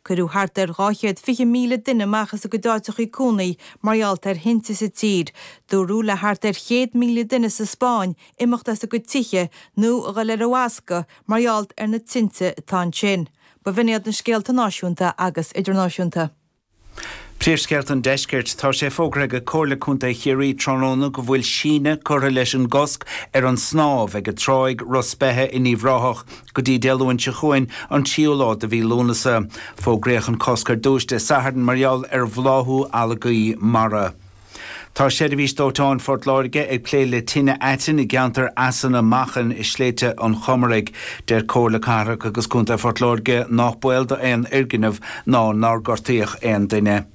Cuireadh thart ar 220,000 duine amach as a gcuid áiteachaí cónaí mar gheall ar thinte sa tír. Dúradh le thart ar 100,000 duine sa Spáinn imeacht as a gcuid tithe nó a dhul ar an bhfoscadh mar gheall ar na tinte atá ansin. B'in iad na scéalta náisiúnta agus idirnáisiúnta. Príomhscéalta an Deiscirt. Tá sé fógraithe ag Comhairle Contae Chiarraí tráthnóna go bhfuil síneadh curtha leis an gcosc ar an snámh ag Tráigh Ros Beithe in Uíbh Ráthach go dtí Dé Luain seo chugainn, an tríú lá de mhí Lúnasa. Fógraíodh an cosc ar dtús Dé Sathairn mar gheall ar bhláthú algaí mara. Tá Seirbhís Dóiteáin Phort Láirge ag plé le tine aitinn i gceantar Eas na Machan i Sléibhte an Chomaraigh. Deir Comhairle Cathrach agus Contae Phort Láirge nách baol d'aon fhoirgneamh ná nár gortaíodh aon duine.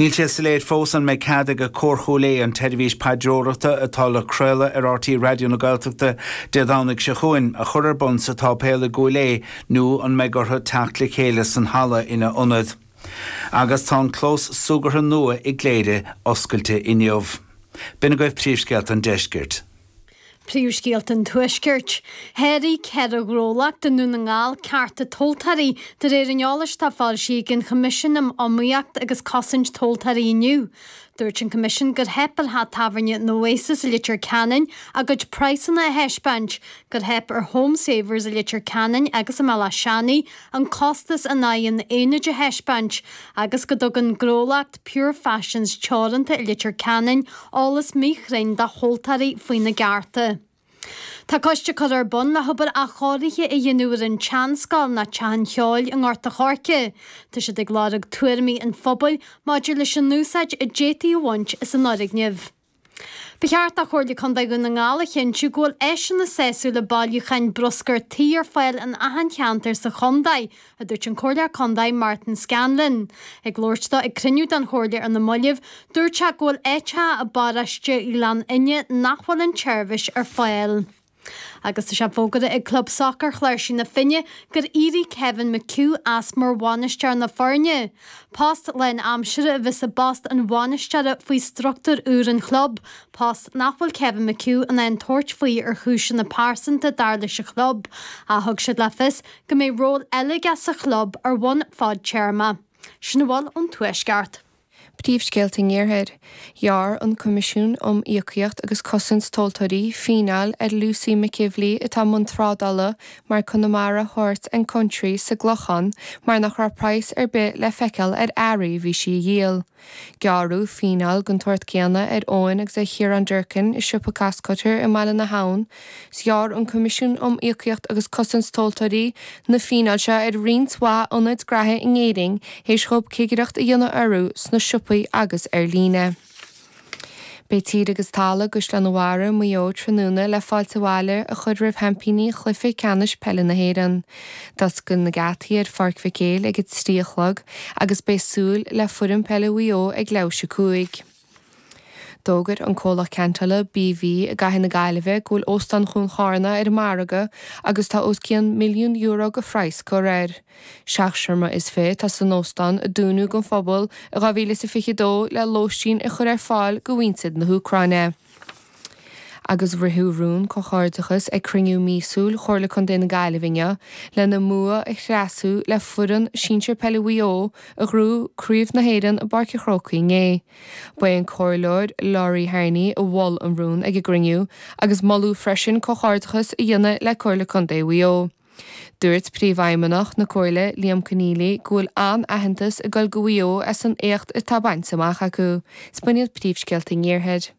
Níl sé soiléir fós an mbeidh cead ag Cór Chúil Aodha an tseirbhís paidreorachta, atá le craoladh ar RTÉ Raidió na Gaeltachta Dé Domhnaigh seo chugainn, a chur ar bun sa tSáipéal i gCúil Aodha nó an mbeidh orthu teacht le chéile san halla ina ionad. Agus tá an clós súgartha nua i gCléire oscailte inniu. B'in agaibh príomhscéalta an deiscirt. Príomhscéalta an Tuaiscirt. Sháraigh ceithre ghnólacht i nDún na nGall cearta tomhaltóirí de réir an eolais atá foilsithe ag an Choimisiún um Iomaíocht agus Cosaint Tomhaltóirí inniu. Dúirt an Coimisiún gur theip ar theach tábhairne an Oasis i Leitir Ceanainn a gcuid praghsanna a thaispeáint, gur theip ar Homesavers i Leitir Ceanainn agus i mBéal Átha Seanaidh an costas in aghaidh an aonaid a thaispeáint agus go dtug an gnólacht Pure Fashions Teoranta i Leitir Ceanainn, eolas míchruinn dá thomhaltóirí faoina gcearta. Tá coiste curtha ar bun le hobair athchóirithe a dhéanamh ar an tseanscoil nó Teach an Cheoil i nGort a' Choirce. Tá siad ag lorg tuairimí an phobail maidir leis an úsáid a d'fhéadfaí a bhaint as an fhoirgneamh. Ba cheart do Chomhairle Contae Dhún na nGall a chinntiú go bhfuil áiseanna sásúla bailiúcháin bruscair tí ar fáil in achan cheantar sa chontae, a dúirt an Comhairleoir Contae Martin Scanlon. Ag labhairt dó ag cruinniú den Chomhairle ar na moillibh, dúirt sé go bhfuil áiteacha i bparóiste Ghleann Fhinne nach bhfuil an tseirbhís ar fáil. Agus tá sé fógartha ag Club Sacair Chláirsigh na Finne gur éirigh Kevin McHugh as mar bhainisteoir na foirne. Post lán aimsire a bheas i bpost an bhainisteora faoi structúr úr an chlub, post nach bhfuil Kevin McHugh in ann tabhairt faoi ar chúiseanna pearsanta dar leis an chlub, ach thug siad le fios go mbeidh ról eile aige sa chlub ar bhonn fadtéarma. Sin a bhfuil ón Tuaisceart. Príomhscéalta an Iarthair. Ghearr an Coimisiún um Íocaíocht agus Cosaint Tomhaltóirí fíneáil ar Lucy McEvilly atá i mbun trádála mar Connemara Horse and Country sa gClochán mar nach raibh praghas ar bith le feiceáil ar earraí a bhí sí a dhíol. Gearradh fíneáil den tsórt céanna ar Eoin agus ar Chiarán Durkin i siopa Costcutter i mBaile na hAbhann Ghearr an Coimisiún um Íocaíocht agus Cosaint Tomhaltóirí na fíneáil seo ar roinnt mhaith ionaid graithe in Éirinn théis dhóib cigireacht a dhéanamh orthu sna siopaí agus ar líne. Beidh tír agus talamh i gCaisleán a' Bharraigh, Maigh Eo tráthnóna le fáilte abhaile a chur roimh sheaimpíní Chluiche Ceannais Peile na hÉireann. D'oscail na geataí ar Pháirc Mhic Éil ag a trí a chlog agus beidh súil le foireann peile Mhaigh Eo ag leathuair théis a 5. D'fhógair an comhlacht ceantála BV i gcathair na Gaillimhe go bhfuil Óstán Chuan Chárna ar an margadh agus tá os cionn milliún euro go phraghas curtha air. Seacht seomra is fiche atá san óstán, a dúnadh don phobal i 2022 le lóistín a chur ar fáil go mhuintir na hÚcráine. Agus ritheadh rún comhghairdeachas ag cruinniú míosúil Chomhairle Contae na Gaillimhe inniu lena mbua a thréaslú le foireann sinsir peile Mhaigh Eo a ghnóthaigh Craobh na hÉireann i bPáirc an Chrócaigh inné. Ba é an Comhairleoir Laurie Harney a mhol an rún ag an gcruinniú agus moladh freisin comhghairdeachas a dhéanamh le Comhairle Contae Mhaigh Eo. Dúirt Príomhfheidhmeannach na Comhairle Liam Conneally go bhfuil an-aitheantas ag dul go Mhaigh Eo as an éacht atá bainte amach acu. Is b'in iad príomhscéalta an iarthair.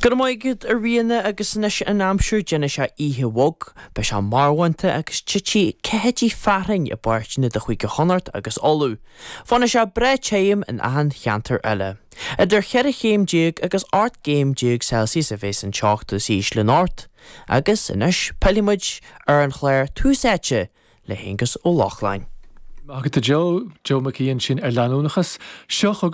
Go raibh maith agat, a Ríona, agus anois an aimsir, déanfaidh sé oíche bhog, beidh sé marbhánta agus titfidh ceathaidí fearthainn i bpáirteanna de Chúige Chonnacht agus Uladh. Fanfaidh sé breá tirim in achan cheantar eile. Idir cheithre chéim déag agus ocht gcéim déag Celsius a bheas an teocht is ísle anocht agus anois pillfimid ar an chlár Tús Áite le hAonghus Ó Lochlainn. Maith agat a Joe, Joe Mhicí ansin ar leanúnachas. Seo chugaibh.